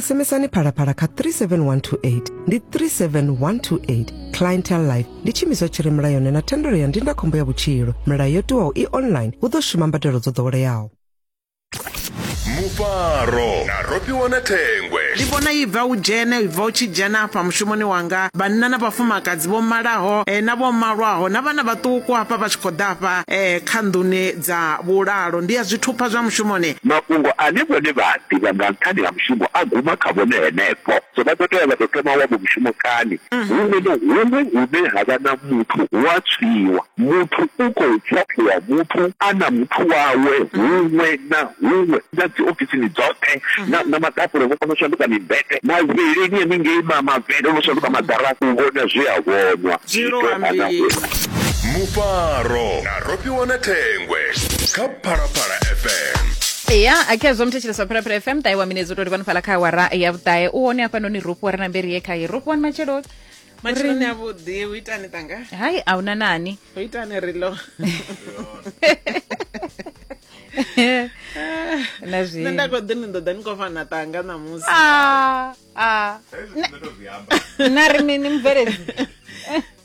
SMSani Phalaphala kha 37128 ndi 37128 Clientele Life ndi tshimiswa tshi re mulayoni na thendelo ya ndindakhombo ya vhutshilo. Milayo yo tiwaho i online hu ḓo shuma mbadelo dzo ḓoweleaho. mufaro na rofhiwa na thengwe ndi vhona i bva u dzhene i bva u tshi dzhena hafha mushumoni wanga vhanna na vhafumakadzi vho malaho eh, na vho malwaho na vhana vhaṱuku hafha vha tshi khou ḓa hafha eh, kha nḓuni Dza vhulalo ndi ya zwithupha zwa mushumoni. Mafhungo ane vhone vha a ḓivha nga nṱhani ha mushumo a guma kha vhone henefho. So vha ḓo tea vha tou thoma wavho mushumo kani? Huṅwe na huṅwe hune ha vha na muthu hu a tswiwa. Muthu u khou ṱhaṱhuvha muthu a na muthu wawe huṅwe na huṅwe, na dzi ofisini dzoṱhe, na, na maḓakule vho kona u shanduka mimbete, mavhilini haningei ma, mavele o no shanduka maḓarafu, u vhona zwe a vhonwa, zwi tou nga na huṅwe. Mufaro. ro fhiwa na thengwe kha phalaphala fm ya akhezwo muthetsheleswa phalaphala fm ṱahe wa minedzi u tou livhani fhala kha awara ya vhuṱahe u hone hafhanoni rofhiwa ri na mberi ye khaye rofhiwani matshelo matshiloni avhuḓi u itani tanga hai a huna nani u itani rilo na zwi nṋe nda khou ḓi ni ḓo ḓa ni khou fana tanga ṋamusi Ah, ah. na ri mini mubveledzi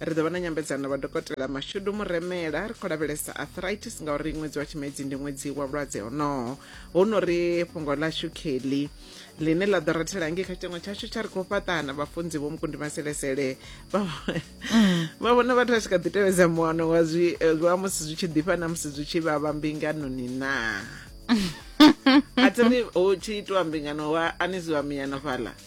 ri ḓo vha na nyambedzano na vhadokotela mashudu muremela ri khou lavhelesa arthritis ngauri ṅwedzi wa tshimedzi ndi ṅwedzi wa vhulwadze honoho hu no ri fhungo ḽashu kheli ḽine ḽa ḓo rathela ngei kha tshitengo tshashu tsha ri khou fhaṱana vhafunzi vho mukundi maselesele vha vha vhona vhathu vha tshi kha ḓi tevhedza muano wa zwi eh, wa musi zwi tshi ḓifha na musi zwi tshi vhavha mbinganoni naa a thi ri hu tshi itiwa mbingano wa aniziwa miyano fhaḽa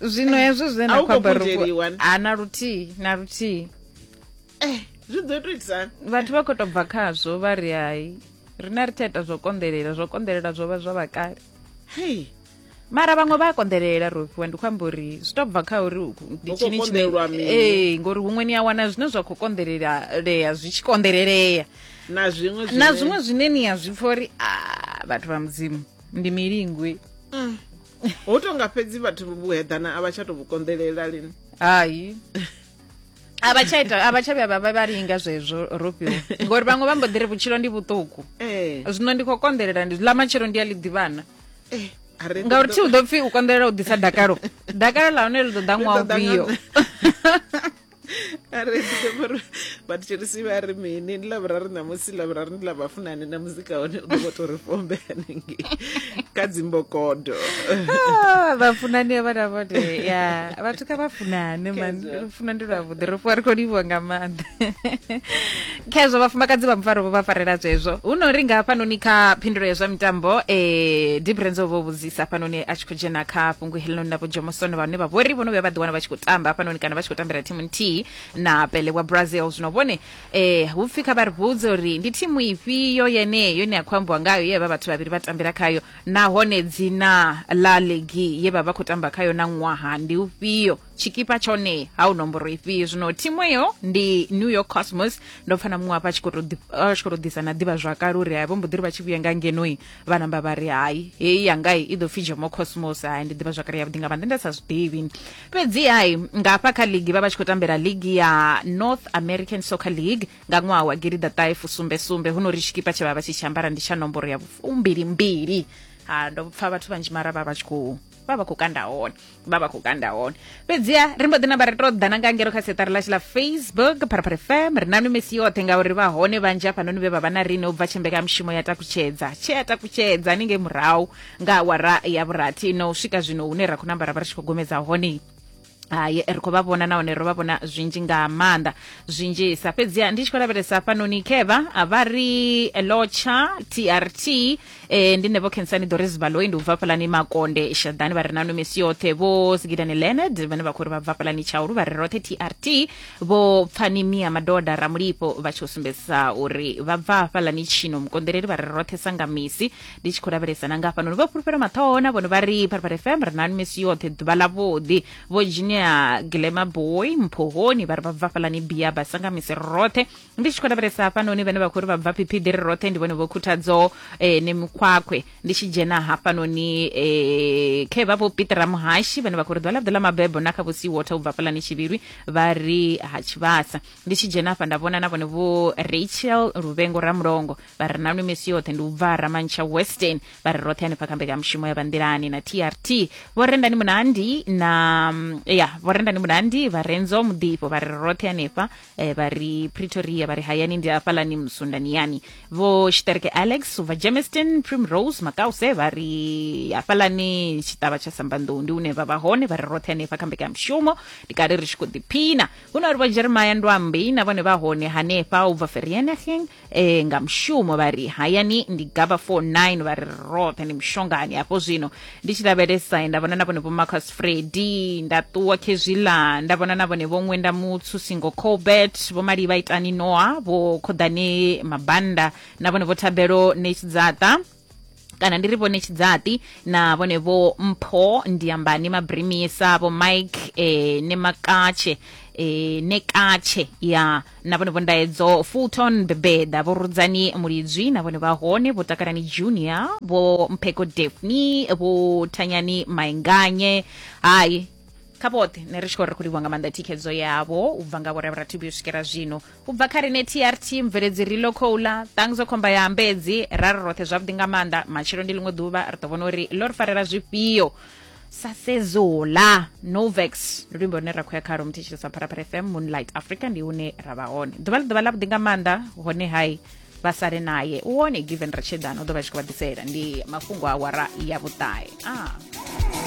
zwino hezwo zwe na khou amba ha na luthihi na luthihi eh zwi ḓo tou itisani vhathu vha khou tou bva khazwo vha ri hai rine ri tsha ita zwo konḓelela zwo konḓelela zwo vha zwa vhakale hei mara vhaṅwe vha a konḓelela rofhiwa ndi khou amba uri zwi to bva kha uri ndi tshini tshine ee ngori huṅwe ni a wana zwine zwa khou konḓelelea zwi tshi konḓelelea na zwiṅwe na zwiṅwe zwine ni a zwi pfa uri a vhathu vha mudzimu ndi milingwi mm. ho tonga fhedzi vhathu vhuheḓana a vha tsha to vhu konḓelela lini hayi a vha tsha ita a vha tsha vhuya vha vha linga zwezwo rofhiwa ngori vhaṅwe vha mbo ḓi ri vhutshilo ndi vhuṱuku eh. zwino ndi khou konḓelela ndi ḽa matshelo ndi a ḽi ḓivhana eh, ngauri thi u ḓo pfhi u konḓelela u ḓisa dakalo dakalo ḽa hone ḽi ḓo ḓa ṅwaha ufhio a ri ḓivhe vhori vha thetshelisi vha ri mini ndi ḽavhuraru ṋamusi ḽavhuraru ndi ḽa vhafunani na muzika hone u ḓo vho tou ri fombe hanengei kha dzimbokodo ah, vhafunani vha na vhone ya vhathu kha vhafunane man lufuna ndi lwavhuḓi ri fhiwa ri khou livhiwa nga maanḓa khezwo vhafumakadzi vha mufaro vho vha farela zwezwo hu no ri nga hafhanoni kha phindulo ya zwa mitambo eh difference o vho vhudzisa hafhanoni a tshi khou dzhena kha fhungo helinoni na vho jomosono vhane vha vhori vho no vhuya vha ḓiwana vha tshi khou tamba hafhanoni kana vha tshi khou tambela thimu nthihi na pele wa brazil zwino vhone eh hu pfi kha vha ri vhudze uri ndi thimu ifhio yeneyo ine ya khou ambiwa ngayo ye vha vhathu vhavhili vha tambela khayo nahone dzina ḽa ligi ye vha vha khou tamba khayo na ṅwaha ndi ufhio tshikipa tshone ha u nomboro ifhio zwino thimu eyo ndi new york cosmos ndo pfa na muṅwe hafha a tshi khou tou ḓi- a tshi khou tou ḓisa na ḓivha zwakale uri hai vho mbo ḓi ri vha tshi vhuya nga ngenoi vha namba vha ri hai heyi yangai i ḓo pfi jomo cosmos hai ndi ḓivha zwakale yavhuḓi nga maanḓa nda sa zwiḓivhi fhedzi hai nga hafha kha ligi vha vha tshi khou tambela ligi ya north american soccer league nga ṅwaha wa gilida ṱahe fusumbe sumbe hu no ri tshikipa tshe vha vha tshi tshi ambara ndi tsha nomboro ya fumbilimbili ha ndo pfa vhathu vhanzhi mara vha vha tshi khou vha vha khou kanda hone vha vha khou kanda hone fhedziha ri mbo ḓi namba ri to ḓana nga ngero kha siṱari ḽashu ḽa facebook pharapara fm ri nanu misi yoṱhe ngauri vha hone vhanzhi hafhanoni vhe vha vha na rine u bva tshimbekanyamushumo ya takutshedza tshe ya takutshedza ni ngei murahu nga awara ya vhurathi no swika zwino hune ra khou namba ra vha ri tshi khou gomedza hone hai ri khou vha vhona nahone ro vha vhona zwinzhi nga maanḓa zwinzhisa fhedziha ndi tshi khou lavhelesa hafhanoni khevha vha ri eh, lotsha trt eh, ndi nevo khensani doris baloi ndi u bva fhalani makonde shaḓani vha re nanu misi yoṱhe vho sigidani leonard vhane vha khou ri vha bva fhalani tshaulu vha re roṱhe trt vho pfani mia madoda ramulipo vha tshi u sumbedzisa uri vha bva fhalani tshino mukonḓeleli vha re roṱhe sanga misi ndi tshi khou lavhelesa na ngafha noni vho fhulufhela maṱhoho na vhone vha ri pharipari fm ri nani misi yoṱhe ḓuvha ḽavhuḓi vho junior glema boy mphohoni vha ri vha bva fhalani bia ba sanga misi roṱhe ndi tshi khou lavhelesa hafhanoni vhane vha khou ri vha bva phiphidi ri roṱhe ndi vhone vho khuthadzo eh, ne mikhwakhwe ndi tshi dzhena hafhanoni eh, khe vha vho pitera muhashi vhane vha khou ri ḓuvha ḽavhuḓi ḽa mabebo na kha vho sea water u bva fhalani tshivhirwi vha ri ha tshivhasa ndi tshi dzhena afha nda vhona na vhone vho rachel luvengo ramulongo vha ri nanwi misi yoṱhe ndi u bva ramantsha western vha ri roṱhe hanefha kha mbekanyamushumo ya vanḓilani na trt vho rendani munandi na mm, ya vho rendani munandi vha renzo muḓifho vha ri roṱhe hanefha eh, vha ri pretoria vha ri hayani ndi afhalani musundani yani vho shiterke alex ubva germiston primrose makause vha ri hafhalani tshiṱavha tsha sambanḓou ndi une vha vha hone vha ri roṱhe hanefha kha mbekanyamushumo ndi kale ri tshi khou ḓiphina hu na uri vho jeremaya ndwambi na vhone vha hone hanefha u bva ferienegeng e, nga mushumo vha ri hayani ndi gaba 49 vha ri roṱhe ndi mushongani hafho zwino ndi tshi lavhelesa nda vhona na vhone vho marcus fredi nda ṱuwa khezwila nda vhona na vhone vho ṅwenda mutsu singo colbert vho mali vha itani noa vho khoḓane mabanda na vhone vho thabelo netsdzaṱa kana ndi ri vho netshidzati na vhone vho mpho ndiyambani mabrimisa vho mike eh, ne makatshe eh, ne katshe ya na vhone vho ndaedzo fulton bebeda vho rudzani mulidzwi na vhone vha hone vho takalani junior vho mpheko defni vho thanyani mainganye hayi kha vhoṱhe ne ri tshi khou ri khou livhuwa nga maanḓa thikhedzo yavho u bva nga vhorevhrathibi u swikela zwino u bva kha rine trt mubveledzi ri lo khoula ṱangzo khomba ya ambedzi ra ri roṱhe zwavhuḓi nga maanḓa matshelo ndi ḽiṅwe ḓuvha ri ḓo vhona uri lo ri farela zwifhio sa sezola novex ndi luimbo lune ra khou ya khalo muthetshelesa pharapara fm moonlight africa ndi hune ra vha hone ḓuvha ḽi ḓuvha ḽavhuḓi nga maanḓa hone hai vha sale naye u wone given ratshedana u ḓo vha tshi khou vha ḓisela ndi mafhungo a wara ya vhuṱahe ah.